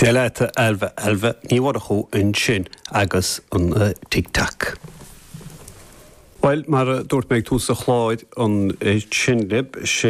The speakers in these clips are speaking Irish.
Dia leat a Ailbhe Ailbhe Ní Mhurchú ansin agus an Tic Tac. Bhuel, mar a dúirt mé ag tús an chláir ansin libh, sé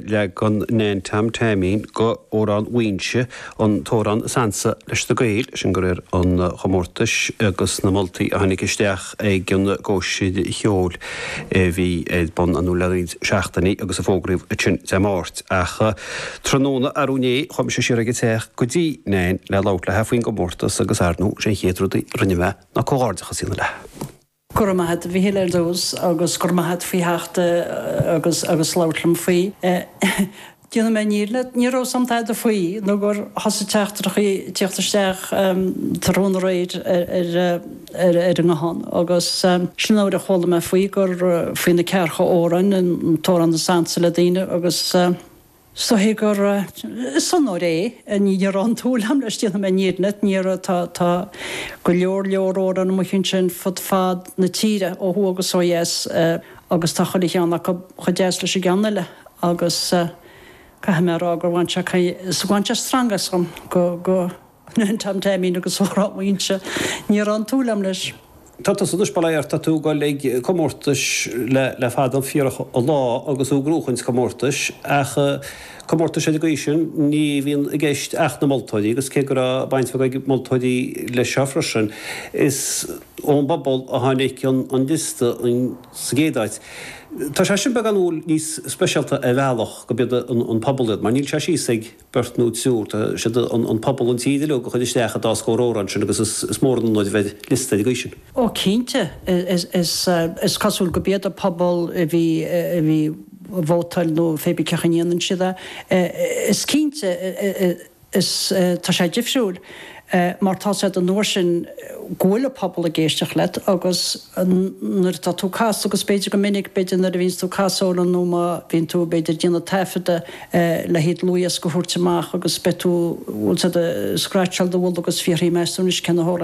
leagan Nan Tom Taimín d'amhrán Mhaínse an t-amhrán is ansa leis na Gaeil, sin de réir an chomórtais agus na moltaí a tháinig isteach. ag an gcóisir cheoil a bhí ar bun le roinnt seachtainí agus a fógraíodh ansin Dé Máirt. Ach tráthnóna arú inné, chuaigh mise siar ag an teach go dtí Nan le labhairt léithi faoin gcomórtas agus ar ndóigh, sé an chéad rud a rinne mé ná comhghairdeachas a dhéanamh léithi. Go raibh maith agat, a Mhichíl ar dtús, agus go raibh maith agat faoi theacht agus labhairt liom faoi. Déanfaidh mé an fhírinne. Ní raibh a fhios agam tada faoi nó gur thosaigh teachtaireachaí ag tíocht isteach tráthnóna aréir ar an nguthán agus sin nuair a chuala mé faoi gur faoi na ceathracha amhrán an tAmhrán is Ansa le daoine agus is dóigh gur onóir é. Ní raibh aon tsúil agam leis, déanfaidh mé an fhírinne. Ní raibh. Tá go leor leor amhráin amuigh ansin fud fad na tíre ó thuaidh agus ó dheas. agus tá chuile cheann acu chomh deas leis an gceann eile, agus caithfidh mé a rá gur bhain sé caoi is bhain sé stangadh asam go, go Nan Tom Taimín agus Amhrán Mhaínse, ní raibh aon tsúil agam leis. Tá tusa anois, bail ó Dhia ort, tá tú ag dul ag comórtais le, le fada fíorach an lá agus tú ag gnóchaint comórtais, ach comórtais ar an gcaoi sin, ní bhíonn i gceist ach na moltóirí, agus cé go raibh baint bheag ag moltóirí leis seo freisin, is. ón bpobal a tháinig an liosta sa gcéad áit. Tá sé sin beagán umhal, níos speisialta ar bhealach gurb iad an pobal iad, mar níl sé síos ag beirt nó triúr, tá siad an pobal, an tír uilig a chuir isteach an dá scór amhrán sin agus is mór an onóir a bheith ar liosta ar an gcaoi sin. Ó cinnte, is cosúil gurb iad an pobal a bhí ag vótáil nó pé ar bith cén chaoi a ndéanann siad é, is cinnte. Is tá sé difriúil mar tá a fhios agat an uair sin go bhfuil an pobal ag éisteacht leat agus nuair atá tú ag casadh agus b'fhéidir go minic, b'fhéidir nuair a bhíonns tú ag casadh amhrán nó má bhíonn tú b'fhéidir ag déanamh taifeadadh le haghaidh dlúthdhiosca a thabhairt amach agus beidh tú, bhfuil a fhios agat ag scratcháil do mhullaigh agus ag fiafraí meas tú anois cé na